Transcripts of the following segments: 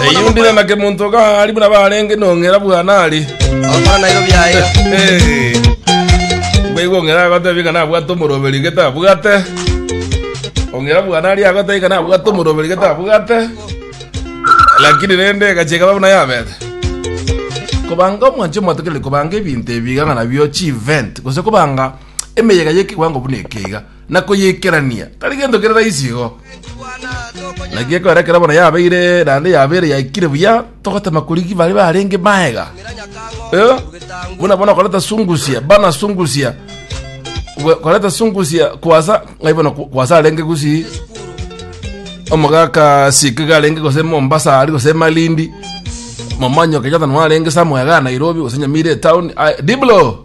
Eyundire na kemonto gari buna barenge nongera bwana ari. Okora nairo biaye. Hey. Baigo ongera agotebi kana abwate omoroberi gete abwate. Ongera bwana ari agotebi kana abwate omoroberi gete abwate. Lakini rende gacheka babuna yabete. Kobanga omwanche mwatekerire kobanga ebinto ebiga ng'a nabio chi event gose kobanga emeyega yekiwango buna ekeiga. na koyeikerania, tari gento kere raisi igo. Naki ekero ekero bono yabeire naende yabeire yaikire buya, togotema korigi bare barenge maega. Eh, buna bono koreta sungusia, bana sungusia. Kwe- Koreta sungusia kwasa, ngai bono ku- kwasa arenge gusi omogaka sikiga arenge gose mombasa ari gose malindi momanyo kenyatta nwarenge samwega nairobi gose nyamire town Ah, diblo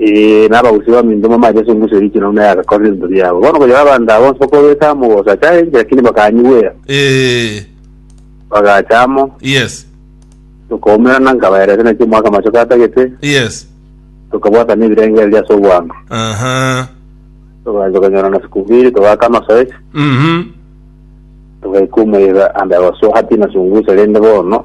Ee, na abagusi b'aminto bamache ase engusu eria ekinene buna yagakorire ebinto biabo. Bono konya abanto aba bonsi bakobeta amo gosa achare enchera, lakini bakanyigwera, Ee, bagacha amo, yes, tokaumerana, nkabaerete naki omwaka amachoka atagete, yes. tokabwatana ebirengererio ase obwango, Aha. togacha konyorana sikubiri, togaka amasoesi, Mhm. togaika omoyega ande abaso hati na sungusa rende bono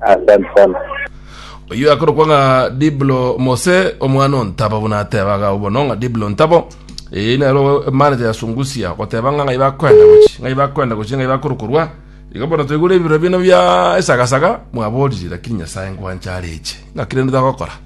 Asante sana. Oyio akorokwa ng'a Diblo Mose omwana o Ntabo buna atebaga agwo bono ng'a Diblo Ntabo ee nero emanete ya Sungusia goteba ng'a ng'ai bakwenda gochi ng'ai bakwenda gochi ng'ai bakorokorwa iga bono toigure ebirore bino bia esagasaga mwaborire lakini Nyasaye ngwancha areche ng'aki rende togokora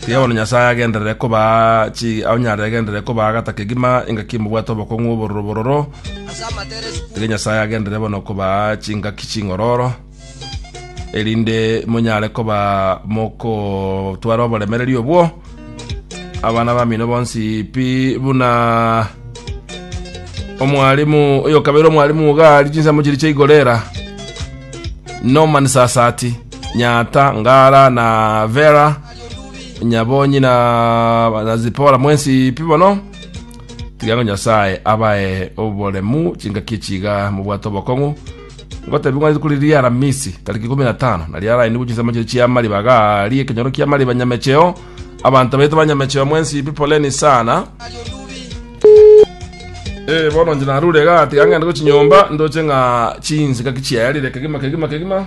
Tiga bono Nyasae agenderere kobaa chi onye aregenderere kobaa gata kegima engaki mobwate obokong'u obororo bororo. Tiga Nyasae agenderere bono kobaa chingaki ching'ororo, erinde monyare koba mokotwara oboremereri obwo. Abana bamino bonsi pi buna omwalimu oyo kabeire omwalimu iga ari chinsemo chiria chia igorera Norman Sasati. Nyata, Ngara, na Vera, Nyabonyi na, na Zipora mwensi pi bono tiga ngo Nyasae abae oboremu chingaki chiga mobwate obokong'u ngotebi ng'wanete kuri ria Aramisi tariki ikumi na tano nari arainigwe chinsemo chiri chia mariba gari ekenyoro kia mariba nyamecheo abanto baito ba nyamecheo mwensi pi poleni sana Eh, bono nje narure iga tiga ng'ende gochinyomba ndoche ng'a chinsika kichiayarire kegima kegima kegima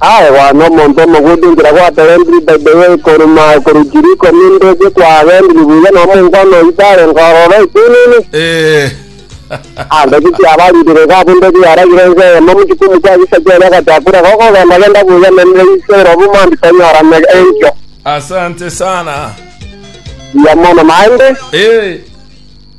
Aye bono omonto omogwiti inchera gwatorentiri etaito eye koruma korwa Chiriko ninde eke kwagendiri buya nomonkwana oito arenge ororo ekiunini. Eh. Ande tikiabaririre iga abunto tibaragire ense eyemo mochikumu kia gisaki oria agachaka korega okogendagenda buya nende ise erobu mambia tonyorane enkio. Asante sana. Buya mono naende. Eh.